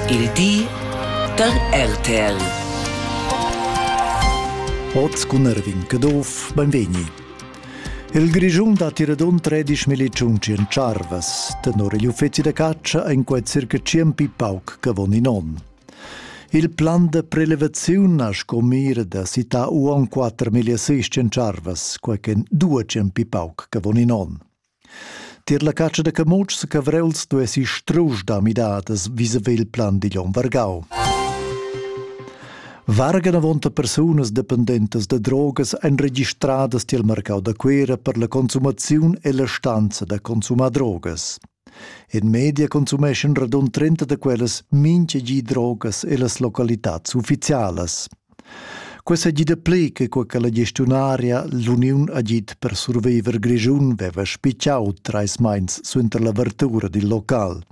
Il di da RTL. Oz cun Erwin Caduff, benvegni. Il Grischun dat ir ad un 13 miliciun cien charvas, tenor igl uffizi da caccia en quei circa 100 pauc che von in onn. Il plan de prelevaziun ha sco mir da cità uon 4.600 charvas, quai che 200 pauc che von in onn. Tier la catscha da camutschs e cavrels duessi strusch da midadas visavi il plan digl onn vargau. Vargan avonta persunas dependentas da drogas ein registradas tiel marcau da Cuera per la consumaziun e la stanza da consumar drogas. In media consumeschan radund 30 da quellas mintga gi drogas ellas localitads ufficialas. Quei seigi dapli che quei che la gestiunaria l'uniun agid per surviver Grischun veva spicciau treis meins suenter l'avertura dil local.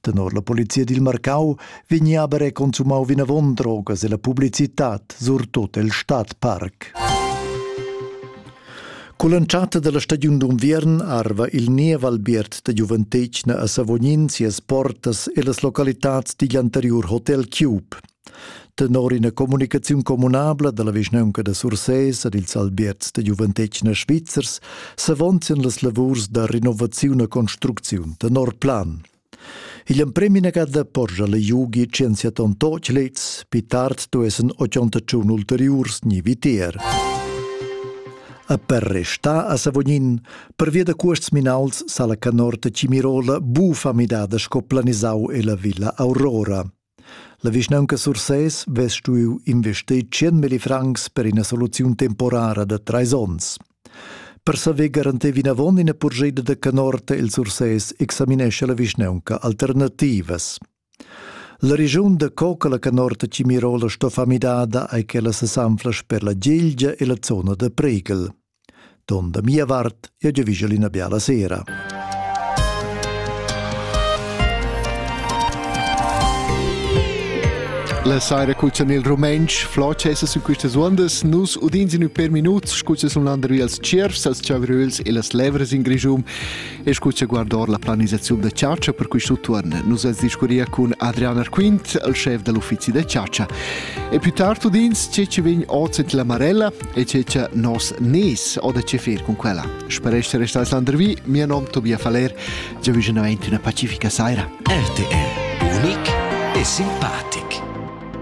Tenor la polizia dil Marcau vegnia aber consumau vinavon drogas e la publicitad, surtut el Stadtpark. Con l'entschatta della stagiun d'unviern arva il niev albiert da giuventetgna a Savognin sias portas e las localitads digl anteriur Hotel Cube. Tenor ina communicaziun communabla dalla vischnaunca da Sursès ed ils albierts da giuventetgna svizzers s'avonzien las lavurs da renovaziun e construcziun tenor plan. Igl emprem inagada porscha la Jugi 180 tochlets, pi tard duessen 81 ulteriurs ni vitier. E per restar a Savognin, pervia da cuosts minauls sa la canorta Cimirola bu famidada sco planisau ella Villa Aurora. La vischnaunca Sursès vess stuiu investir tschien milli francs per ina soluziun temporara da treis onns. Per saver garantir vinavon ina purschida da canorta il Sursès examinescha la vischnaunca alternativas. La regiun da co che la canorta Cimirola sto fa midada ei quella sesanfla sper la Gilgia e la zona da Pregel. Ton da mia vart, ia giavischel ina biala sera. La saira cuzzan il rumentsch, flot cessas in questas undas, nus udins in per minuts, scuzzas un landervi als tschiervs, als chavröls e las levras in grischum, E scu che guardor la planisaziun da chargia per questo turn, nus as discuria cun Adrian Arquint, il chef dell'uffizi da chargia. E più tardi udins ce ci vegn oz la Marella e ce ci nos nes o da che fer con quella. Spero essere stato Landervi, mio nome Tobias Faller, già vicino una pacifica saira. RTR, unic e simpatico.